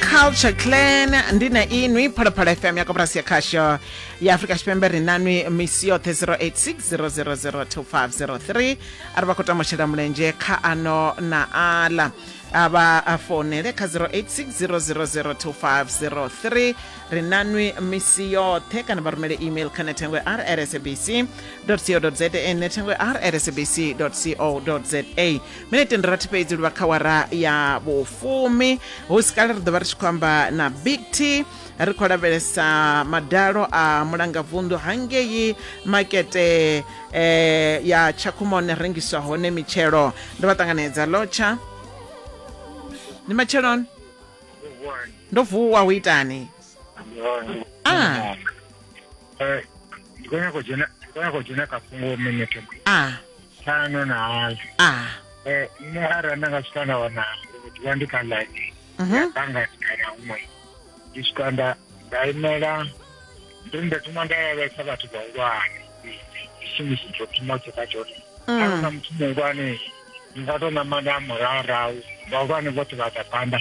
culture clan ndi na inwi phalaphala fm ya koporasi ya khasho ya afurika tshipembe ri nanwi misi yoṱhe 0860002503 a ri vha khou tama u shela mulenzhe kha ano na aḽa a vha a founele kha 0860002503 ri nanwi misi yoṱhe kana vha rumele email kha nethengo ya rsabc co za nethengo ya rsabc co za minete ndi rathi fhedzi luvha kha wara ya vhufumi hu si kale ri ḓo vha ri tshi khou amba na big t ri khou lavhelesa madalo a mulangavunḓu hangei makete eh, ya tshakhumone rengiswa hone mitshelo ndo vha ṱanganedza lotsha ndi matsheloni ndo vuwa hu itani ah Eh, ndi khou nyaka u dzhena ndi khou nyaka u dzhena kha fhungo minete ah ṱhanu na hayo ah Eh, nṋe arali nda nga swika nda wana uri ndi vha ndi kha ḽaini Mhm. ya bangani kana huṅwe ndi swika nda nda imela ndi ri nda thoma nda lavhelesa vhathu vhahulwane tshishumisi tsho thoma tsho kha tshone Mm. arali na muthu muhulwane ndi nga tou ṋamanda murahu vhahulwane vhoṱhe vha ḓa phanḓa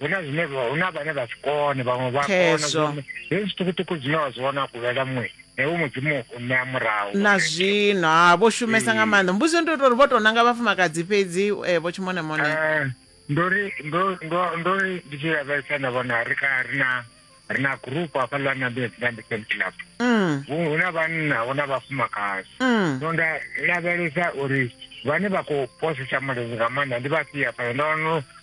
hu na zwine hu na vhane vha si kone vhaṅwe vha kona hezwi zwiṱukuṱuku zwine wa zwi vhona kulela muṅwe ewe mudzimu u ṋea murahu na zwino ha vho shumesa nga maanḓa mbudzo ndi tori vho tou nanga vhafumakadzi fhedzi eh, vho tshimone mone eh, ndori ndori ndi tshi lavhelesa nda vhona ri kha ri na ri na gurupu hafha ḽa nambezambesam club mm. hu na vhanna hu na vhafumakadzi mm. so nda lavhelesa uri vhane vha khou posisa mulenzhe nga maanḓa ndi vhafhia fhano ndo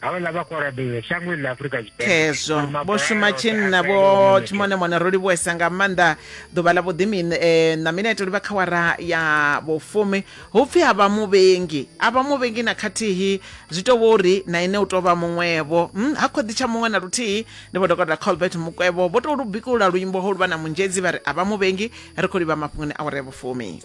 havhala vha khou rabela shango ḽa afurika tshipembekhezwo vho shuma tshinna vho tshimonemone ro livhuwesa nga maanḓa ḓuvha ḽa vhuḓimi eh, na mineto livha kha wara ya vhufumi hu pfhi a vha muvhengi a vha muvhengi na khathihi zwi tou vho uri na ine u tou vha muṅwevho hmm, ha khoḓi tsha muṅwe na luthihi ndi vho dokotela colbert mukwevho vho tou lu bikulula luimbo ho luvha na munzhedzi vha ri a vha muvhengi ri khou livha mafhungoni a wara ya vhufumi